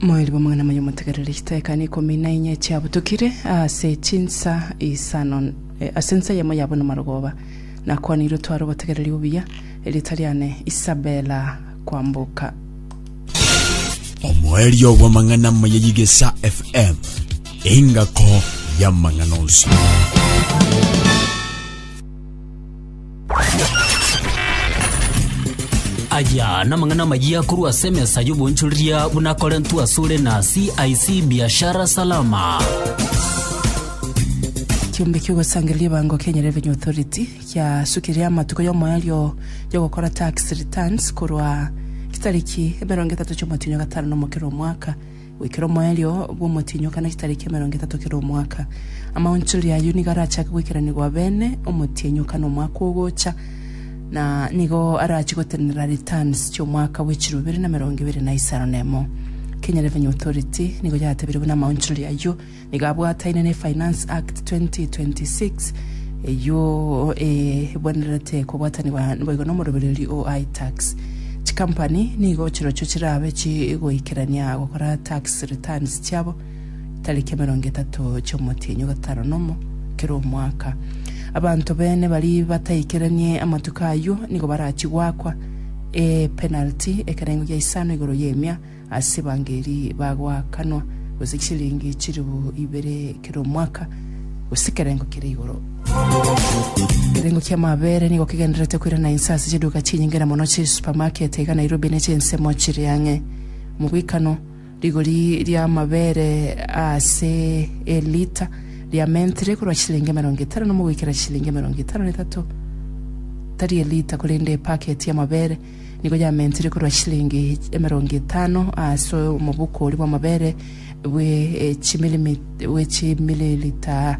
Moeri bw'amang'ana maya motegerere chidaeka neikomi na inye chiabutukire ase chinsa isano eh, ase ensa yamo yabo namarogoba. Nakwanirwe tware obotegereri obuya, erieta riane Isabela kwamboka. omoerio bw'amang'ana maya yigesa fm engako y'amang'ana onsi Aya namang'ana amayia korwa ase emesa y'obonchoreria buna akorentwe asore na CIC Biashara Salama. Ekiombe ki'ogosangereria ebango Kenya Revenue Authority kiasukire amatuko y'omoerio y'ogokora tax returns korwa chitariki emerongo etato chi'omotienyi o gatano na omokera omwaka goikera omoerio bw'omotienyi o kana chitariki emerongo etato kera omwaka. Amaonchori ayio nigo arachake goikeranigwa abene omotienyi o kana omwaka ogocha, na nigo arachie gotenenera returns chi'omwaka bwe chiro ibere na emerongo ebere na isano na emo. Kenyerebe ny'Authority nigo yatebire buna amaonchori ayio Nigo abwataine ne Finance Act 2026, eyio ebwenerete kobwatanigwa naboigo n'omorobererio o iTax. Chikampani nigo chirochio chirabe chigoikerania gokora tax returns chiabo tariki emerongo etato chi'omotienyi ogatano nomo kera omwaka. Abanto bene bari bataikeranie amatuko ayio nigo barachie goakwa epenalty ekerengo gia isano igoro y'emia Ase evangeli bagoakanwa gose chisiringi chilifu ibere kera omwaka, gose kerengo kere igoro. Ekerengo kia amaabere nigo kegendererete koirana inse ase chiduka chinyinge na mono chisupermarket iga Nairobi ne chinsemo chiri ang'e. Omogwekano, rigori ria amaabere aase elita riamentere korwa chisiringi emerongo etano na omo goikera chisiringi emerongo etano na etato, tari elita korende epaketi y'amaabere, nigo yamentire korwa chilingi emerongo etano ase omobuko oria bw'amabere bwe eh, chimilimi- bwe chimililita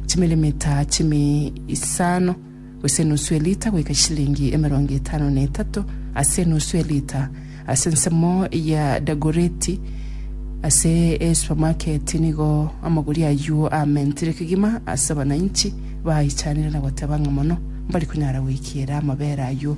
chimilimita chimi isano gose enusu elita goika chilingi emerongo etano na etato ase enusu elita ase ensemo ya dagoreti ase esupermarket nigo amagori aywo amentire kegima ase abananchi baichanire na goteba ng'a mono mbari konyara goikiera amabere aywo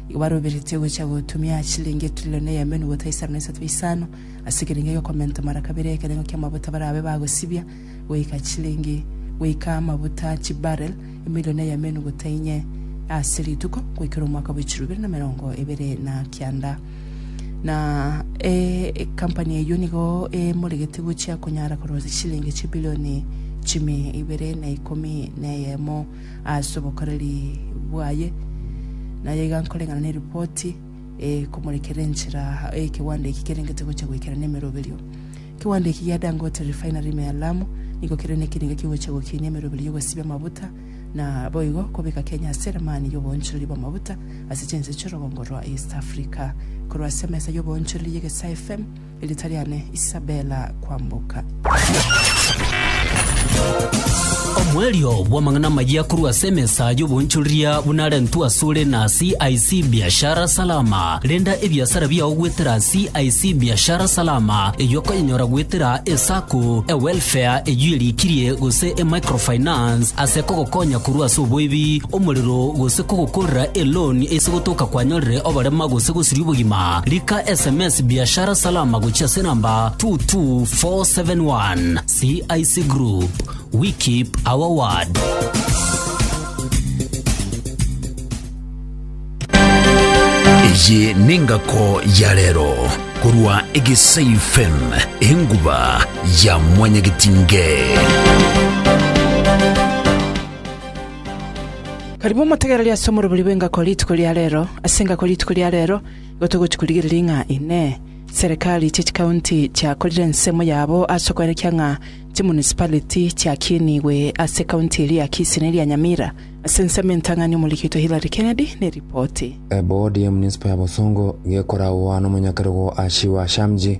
Igo baroberetie gocha gotumia aa chiliingi etrilioni eyemenu gotwa isano na isato ya isano ase ekerengo egeokomentwa mara kabere ekerengo ki'amabuta barabe bagosibia goika chiliingi goika amabuta chibarrel emilioni eyemenu gotwa inye ase rituko goikera omwaka bwe chiluu ibere na emerongo ebere na kianda. Na ecompany eyio nigo emoregete gochia konyara korosia chiliingi chibilioni chime ibere na ikomi na eyemo. ase obokoreri bwaye, na aiga nkoreng'ana neripoti ekomorekerera enchera ekegwanda eki kerengete gocha goikera nemeroberio. Ekegwanda eki gia Dangote Refinery ime ya Lamu nigo kere nekerengo kegocha gokinia emeroberio y'ogosibia amabuta na boigo kobeka Kenya ase eramani y'oboonchoreri bw'amabuta ase chinse chi'orogongo rwa East Africa. Korwa ase emesa y'oboonchoreri y'egesaaa FM, Erita riane Isabella Kwamboka. Omoerio bw'amang'ana amayia korwa ase emesa y'oboonchoreria bunarentwe asore na CIC Biashara Salama. Renda ebiasara biao gwetera CIC Biashara Salama eyio okonyenyora gwetera esako, ewelfare eyio erikirie gose emicrofinance ase kogokonya korwa ase oboibi, omorero gose kogokorera eloan ase gotoka kwanyorire oborema gose gosiria obogima. Rika sms Biashara Salama gochia ase enamba 22471. CIC Group, we keep our word. eye nengako ya rero korwa egesai fm enguba ya mwanyagitinge Karibu motegereri ase omorobori bw'engako rituko ria rero ase engako rituko ria rero Gotogochi korigereria ng'a Inee! Serikali chie chikaunti chiakorire ensemo yabo ase okoerekia ng'a chimunicipality chiakiinigwe ase ekaunti eria ya Kisii ne eria Nyamira? Ase ensemo entang'ani omorigereritwe Hillary Kennedy neripoti. Eboodi y'emunisipo ya Bosongo gekoragwa nomonyakero go Ashiwa Shamji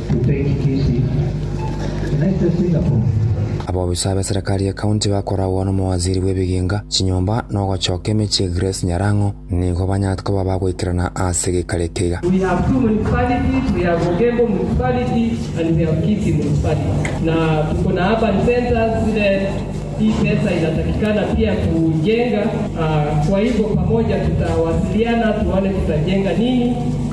Abobisa b'eserekari ye county bakoragwa n'omowaziri bw'ebiginga, chinyomba, na ogochoka emechie Grace Nyarang'o nigo banyarete koba abagoikerana ase geikaro eke iga.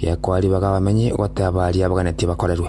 Gekwariba g'abamenyi goteba baria baganetie bakorerwe.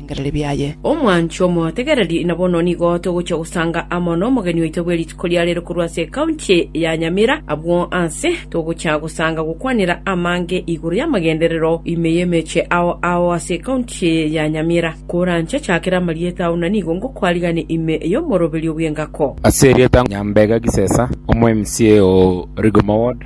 nebirengererio biaye. Omwancho omotegererie, na bono nigo togochia gosanga amo nomogeni oito bwe rituko ria rero korwa ase ekaunti ya Nyamira. Abwo aase togochia gosanga gokwanera amange igoro y'amagenderero ime y'emeche ao ao ase ekaunti ya Nyamira. Koranchachakere amarieta ao na nigo ngokwarigane ime y'omoroberio bw'engako. Ase erieta Nyambega Gisesa, omo mca o Rigoma Ward.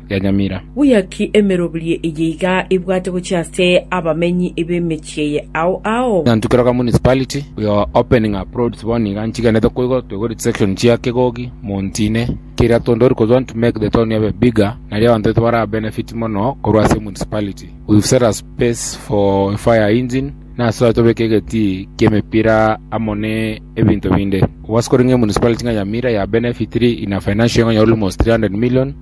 yanyamira. Buya ki emeroberio eye iga ebwate gochia ase abamenyi b'emechie eye ao ao? Nyantuke Roka Municipality, we are opening up roads bono iga nchigenete koigo toigoreti section chia Kegogi, Montine, keria tondori kojoin to make the town ebe bigger naria abanto baito bara benefit mono korwa ase municipality. We've set a space for a fire engine nasoa tobeke egetii ki'emepira amo ne ebinto binde. Obwasi koreng'e emunicipality ng'a Nyamira ya benefitiri in a financial way ng'a almost 300 million.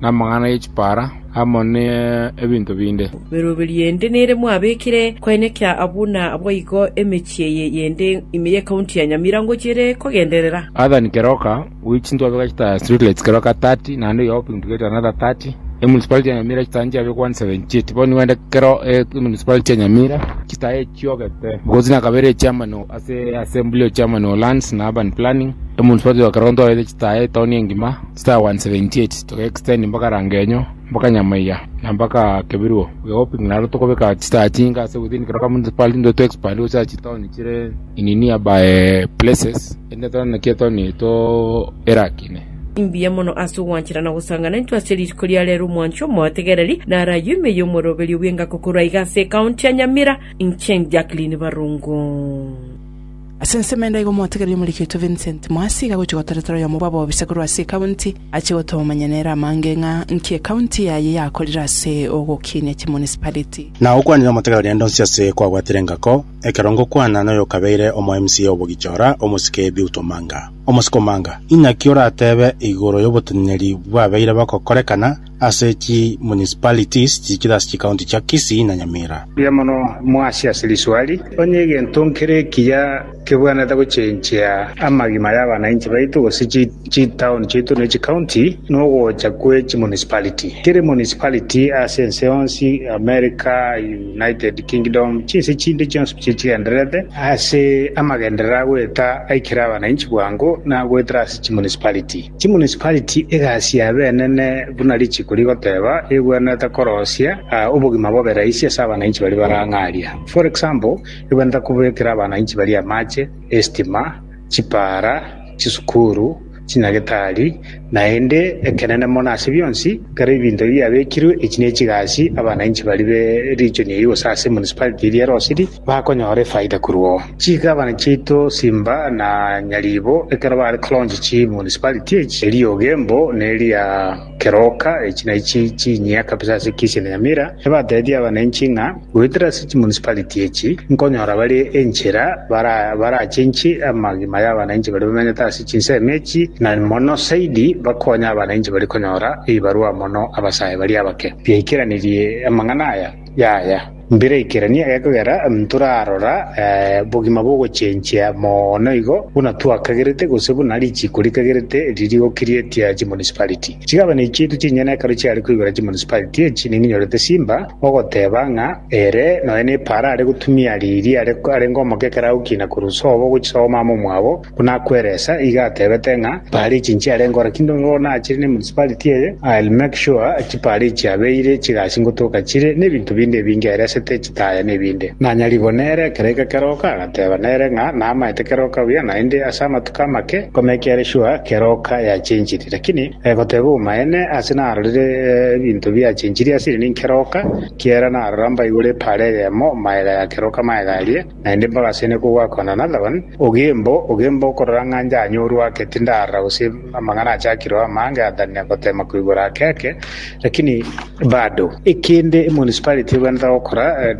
namang'ana ye chipaara, amo nebinto binde. Emeroberi yende nere mwabekire koenyekia abwo na abwo igo emechie eye yende ime ye county ya Nyamira ngochiere kogenderera. Adhan Keroka we chinto abeka chitaya street lights Keroka 30 naende oyo open to get another 30 e municipality ya Nyamira chitaya nchiabekwa 178 bono nigo ende kero e municipality ya Nyamira chitaya echiogete because nakabere e chairman o- ase assembly o chairman o lands na urban planning e municipality ya Keroka ntoete chitaya etown engima Star 178 toga extend mpaka Rangenyo mpaka Nyamaiya na mpaka Kebiruo we hoping naro tokobeka chistaa chinga ase within Keroka municipality ndo to expand gose achi town chire in nearby places ende tore naki etoni to erakine Mbuya mono ase ogwanchera na gosangana intwe ase rituko ria rero omwancho omotegereri naro ayio ime y'omoroberio bw'engako korwa iga ase ecounty ya Nyamira inche Jacqueline Barongo. Ase ensemo ende aiga omotegeria omorekeitwe Vincent Mwasi iga agochia gotoretera oyomo bw'abobisakorwa ase ekaunti, achie gotomanya nere amange ng'a nki ekaunti yaye yakorire ase ogokinia chimunicipality. Na okwanire omotegeria rende onsi ase kwabwatire engako, ekero ngokwana noyokabeire omo MC o Bogichora, omosike Biut Omanga. Omosike Omanga, inaki orateebe igoro yoboteneneri bwabeire bogokorekana ase chi municipalities chichire ase chikaunti chia Kisii na Nyamira. Mbuya mono mwasi ase riswali. Onye egento nkere ekiya kebwanete gochenchia amagima y'abanainchi baito gose chitown chiaito ne chikaunti nogocha kwe chimunicipality. Kere municipality ase ense yonsi, America, United Kingdom, chinse chinde chionsi pi chigendererete ase amagenderero agoeta aikera abanainchi bwango nagoetera ase chimunicipality. Chimunisipariti egasi y'abenene buna rituko rigoteba ebwenerete korosia obogima bobe rahisi ase abananchi baria barang'aria. For example, ebwenerete kobekera abananchi baria amache, estima, chipaara, chisukuru, chinyagetari, naende ekenene mono ase bionsi, ekero ebinto ebi biabekirwe, echi nechigasi abananchi baria be region eyio gose ase emunisipariti eria erosiri bakonyora efaida korwa oo. Chigabana chiaito Simba na Nyaribo ekero bare kolaunch chi municipality echi, eria Ogembo na eria Keroka, echi naichi chinyia kabisa ase ekesi ya Nyamira, ebatebirie abananchi ng'a goetera ase chimunicipality echi nkonyora bare enchera bara barachinchi amagima y'abananchi baria bamenyete ase chinsemo echi na mono saidi bakonye abananchi baria konyora ebibarua mono abasae baria abake. Biaikeranerie amang'ana aya, Yaya, mbiraikeranie egekogera ntorarora obogima bw'ogochenchia mono igo buna twakagerete gose buna richiiko rikagerete riri gokiriatia chimunicipality. Chigabane chiaito chinyene ekero chiare koigora chimunicipality echi ninkinyorete Simba ogoteba ng'a ere nonya nepaara are gotumia riiri arenge omoke ekero agokina korwa sobo gochia sobo mama omwabo, Buna kweresa, iga atebete ng'a parichi nchiare nkore kindo nigo nachire ne municipality eye, I'll make sure chiparichi abeire, chigasi ngotoka chire, nebinto binde ebinge eresete, chitaya na ebinde. Nanyarigwe nere ekero eke keroka, agateba nere ng'a namaete keroka buya, naende ase amatuko amake nkomekere sure keroka yachenchiri. Lakini goteba obomaene, ase narorire ebinto biachenchirie asire ninkeroka, kiera narora mbaigure epara eyemo, maega ya keroka maega aria, Naende mbagaseine kogwakana Nathan, ogembo, ogembo okorora ng'a njanyorwe ake, tindarora gose amang'ana achakirwe amange atanire goteema koigora ake ake, lakini bado. Ekende emunicipality ebwenerete gokora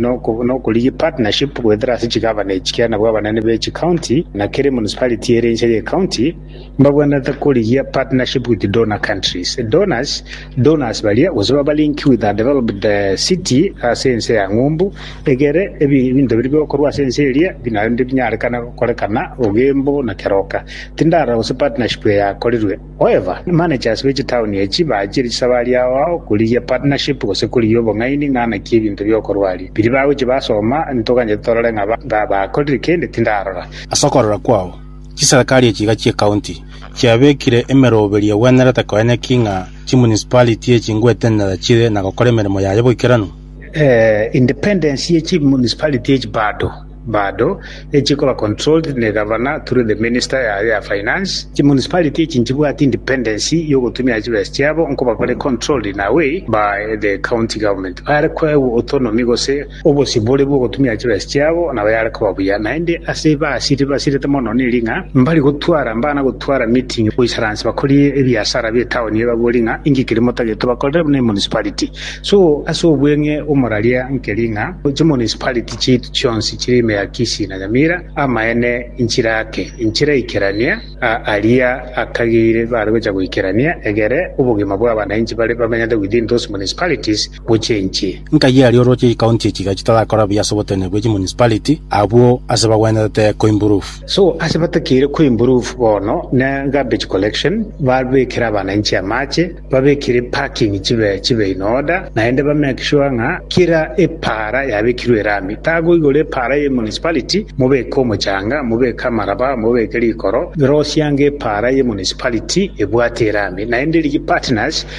nokorigia partnership goetera ase chigavana echi kiana nabwo abanene be chicounty na kera emunicipality ere inse y'ecounty mbabwenerete korigia partnership with donor countries. Donors. Donors baria, gose babalinki with undeveloped city, ase ense ya ng'umbu, egere ebi- ebinto biria bigokorwa ase ense eria bi naende binyarekane gokorekana ogembo na keroka. Tindarora gose partnership eye yakorirwe. However, managers be chitown echi baachire chisabari ao ao korigia partnership gose korigia obong'aini ng'a naki ebinto bigokorwa aria. Biria bagochia basoma, ntoganyete torore ng'a ba- ng'a bakorire kende, tindarora. Ase okorora kwao, Chiserikari echi iga chi'ecounty chiabekire emeroberio egwenerete koyanya ki ng'a chimunicipality echi ngwetenenera chire na gokora emeremo yaye boikeranu. Eh, independence ye chimunicipality echi bado bado echikoba controlled negavana through the minister yaye ya finance. Chimunicipality echi nchibwati independence yogotumia chibesa chiabo nkoba bare controlled in a way by the county government. Bare koegwa autonomy gose Obosibore bw'ogotumia chibesa chiabo nabo yare koba buya, naende ase basiri basirete mono neri ng'a mbari gotwara mbana gotwara meeting goisaransa bakori ebiasara bi'etaoni eye babori ng'a inki keria motagete tobakorere buna emunicipality. So ase obweng'e omoraria nkeri ng'a chimunicipality chiaitu chionsi chire ime ya Kisii na Nyamira amaene nchirake nchiraikerania aria akageire bare gocha goikerania egere obogima bw'abanainchi bare bamenyete within those municipalities gochia inche. Nkayia aria oroche chikaunti echi iga chitarakora buya ase obotenene bwe chimunicipality abwo ase bagwenerete koimprove. So ase batakeire koimprove bono ne garbage collection, babekere abananchi amache, babekere parking chibe chibe in order, naende ba make sure ng'a kera epaara yabekirwe erami. Tagoigora epaara ye municipality mobeke omochanga, mobeke amaraba, mobeke rikoro, rosia ng'a epaara ye municipality ebwate erami naende rigie partners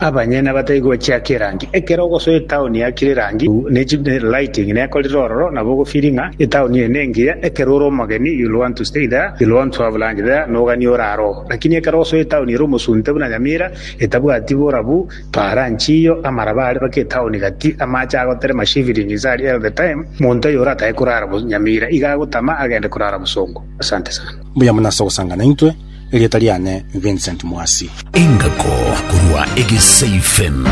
Abanyene abatari gochiaka erangi. Ekero ogosoa etaoni yakire erangi ne chi lighting nekorire ororo nabo ogofili ng'a etaoni eye nengiya ekero ore omogeni you will want to stay there you will want to have lunch there noganie orare oo lakini ekero osoa etaoni ere omosunte buna Nyamira etabwati borabu para nchiyo amaraba are baka etaoni gati amache agoterema shivilings are all the time monto oyo oratae korara Nyamira iga agotama agende korara Bosongo. Asante sana. Mbuya mono ase ogosanga naintwe. Erieta riane Vincent Mwasi. Engako korwa Egesaifen.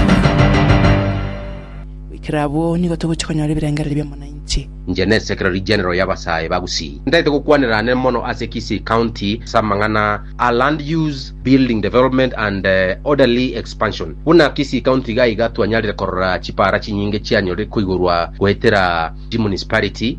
Goikera abwo nigo togochia konyora ebirengererio bi'omonanchi. Inche ne Secretary General y'abasae ba Gusii ntaete gokwanera ane mono ase Kisii County ase amang'ana a Land Use, Building Development and Orderly Expansion. Buna Kisii County iga iga twanyarire korora chipaara chinyinge chianyorire koigorwa goetera chimunicipality,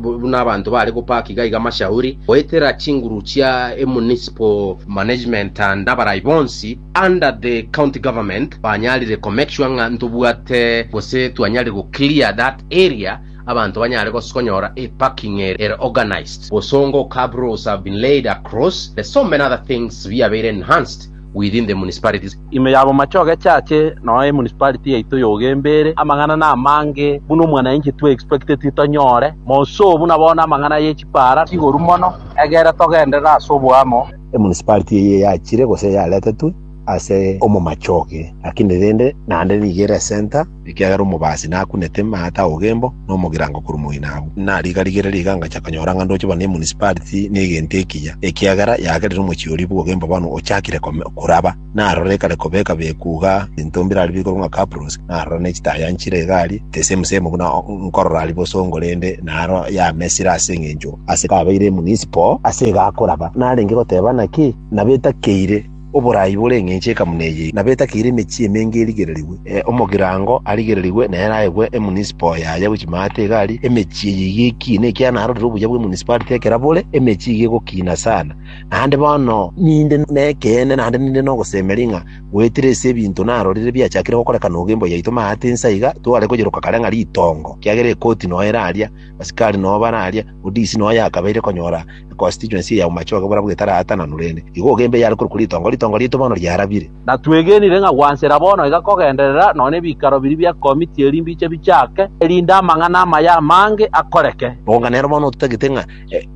buna abanto baare gopaaka iga iga amashauri goetera chinguru chia e municipal management and abarai bonsi under the county government banyarire ko make sure ng'a ntobwate gose twanyarire go clear that area abanto banyare gos- konyora e parking ere ere organised, bosongo, curb rules have been laid across, the so many other things biabeire enhanced. within the municipalities. Ime ya bomachoge chache noe emunicipality yaito y'ogenbere amang'ana namange buna omwanainchi twe expecteti tonyore. Moso buna bono amang'ana ye chipara chigoru mono egere togenderere ase oboamo. Emunicipality eye yachire gose yaretetwe ase omomachoge lakini rende naende nigo ere center. Ekiagera omobaasi nakunete maate a ogembo na omogirango korwa moino agwo, na riga rigereria iga ngacha konyora ng'a ndoche buna emunisipaliti na egento ekiya, ekiagera yagerire omochie oria bw'ogembo bono ochakire koraba. Na aroro ekare koba ekabekwa iga ebinto mbirari bikorwe ng'a kapros, na aroro ne chitaya nchire iga aria, tesemu semu buna nkorora aria bosongo rende naro yamesire ase engencho ase kabeire emunisipo ase iga akoraba. Narenge goteba naki? Nabo etakeire. Oboraai bore eng'encho ekamuna eye nabo etakeire emechie emenge erigererigwe. Omogirango arigererigwe nere aegwe emunisipal yaye gochia maate iga aria emechie eye iga ekiine, ekiagera narorire obuya bw'emunisipality ekera bore, emechie iga egokiina sana. Naende bono ninde nekeene naende ninde nogosemeria ng'a goetire ase ebinto narorire biachakire gokorekana ogo emboyo yaito maate insa iga, tware koyeroka kare ng'a ritongo, ekiagera ekoti noyo ere aria, abasikari noyo bare aria, odisi noyo yakabeire konyora. na constituency ya Umachoge bora bw'etaraatananwa rende. Igo ogembe eyare korokwa ritongo, ritongo riaito bono riarabire. Na twegenire ng'a gwansera bono iga kogenderera nonya nebikaro biria bia Committee eri mbiche bichake, erinde amang'ana amaya amange akoreke. Boka nero bono ototagete ng'a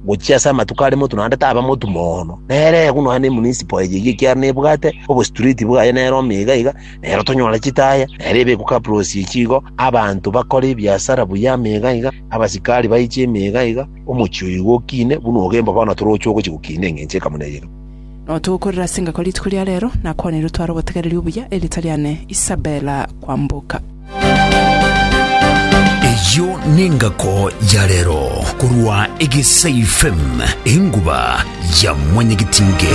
gochia ase amatuko are motu naende taba motu mono. Nere eku nonya ne municipal eye iga ekiara nebwate obostreet bwaye nere ome iga iga, nero tonyore chitaya, nere ebe eku capirosi echi igo, abanto bakore ebiasara buya ime iga iga, abasikari baiche ime iga iga, Omochie oyo igo okine, buna ogemba bono toroche ogochia gokina engencho eye kamo neyemo. Nao togokorera ase engaki rituko ria rero, nakwaneirie otware obotegereri obuya, erieta riane Isabella Kwamboka. Eyio nengako ya rero korwa Egesaifem, enguba ya mwanyagetinge.